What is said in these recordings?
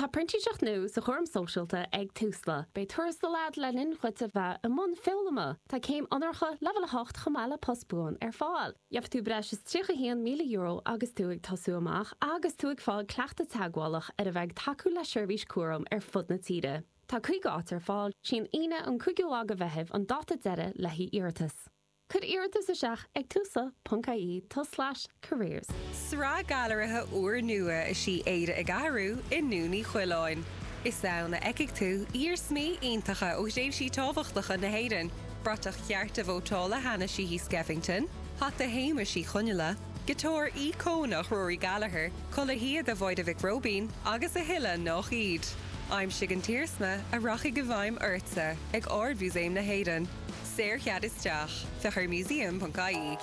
Tá printíseacht nua sa chúram sóisialta ag Tusla. Beidh tuarastal agat le linn duit a bheith i mbun foghlama. Tá céim onóracha leibhéal 8 chomh maith le post buan ar fáil. Gheobhaidh tú breis is €31,000 agus tú ag tosú amach agus tú ag fáil cleachtadh teagmhálach ar a bheith ag tacú le seirbhísí cúraim ar fud na tíre. Tá 50 áit ar fáil. Is í an Aoine an 5ú lá de Mheitheamh an dáta deireadh le haghaidh iarratas. Cuir iarratas isteach ag Tusla ponc IE tulslais careers. Sraith gailearaithe úrnua is í Éire ag Athrú i nDún Uí Choileáin. Is ann a fheicfidh tú iarsmaí iontacha ó thréimhsí tábhachtacha na hÉireann, bratach chearta vótála Hanna Sheehy Skeffington, hata Shéamuis Uí Chonghaile, giotár íocónach Rory Gallagher, culaith shíoda Mháire Mhic Róibín agus a thuilleadh nach iad. Aimsigh an t-iarsma a rachaidh i bhfeidhm ortsa ag Ard-Mhúsaem na hÉireann. Saorchead isteach, féach ar museum.ie.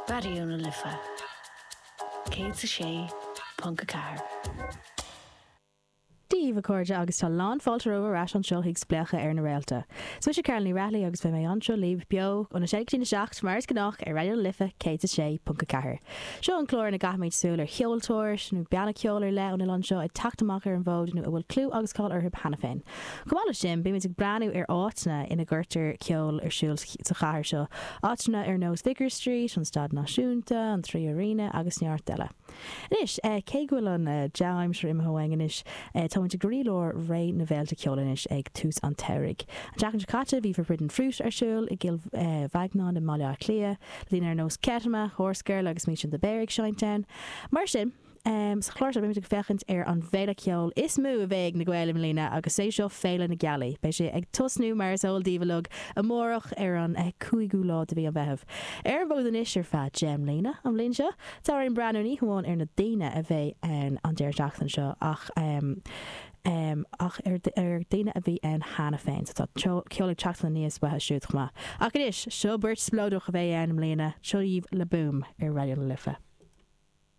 Raidió na Life 106.4. Dia dhaoibh a chairde agus tá lán fáilte romhaibh ar ais anseo chuig Spléachadh ar na Réalta. Is mise Carol Ní Raghallaigh agus beidh mé anseo libh, beo, ón 6 go dtí'n 7, mar is gnách, ar Raidió na Life 106.4. Seo an clár ina gcaithfimid súil ar cheoltóir, nó banna ceoil ar leith ón oileán seo atá ag teacht amach ar an bhfód nó a bhfuil clú agus cáil orthu cheana féin. Chomh maith leis sin, bímid ag breathnú ar áiteanna ina gcuirtear ceol ar siúl sa chathair seo, áiteanna ar nós Vicar Street, an Staid Náisiúnta, an Three Arena agus neart eile. Anois, cé go bhfuil an dea-aimsir imithe uainn anois, táimid i gcroílár ré na bhféilte ceoil anois ag tús an tsamhraidh. An tseachtain seo caite, bhí Forbidden Fruit ar siúl i gCill Mhaighneáin i mBaile Átha Cliath, le daoine ar nós Kettama, Horsegirl agus Mission The Bear ag seinnt ann. Mar sin, Sa chlár seo beimid ag féachaint ar an bhféile ceoil is mó a bheidh ag na Gaeil i mbliana agus 's é seo Féile na Gealaí. Beidh sé ag tosnú mar is eol daoibh uilig amárach ar an 5ú lá de mhí an Mheithimh. Ar an bhfód anois ar feadh 10 mbliana an bhliain seo. Tá orainn breathnú ní hamháin ar na daoine a bheidh ann an deireadh seachtaine seo ach ach ar ar daoine a bhí ann cheana féin so tá ceol ag teacht aníos uathu siúd chomh maith. Ach anois, seo beirt spleodrach a bheidh ann i mbliana, seo dhaoibh Le Boom ar Raidió na Life.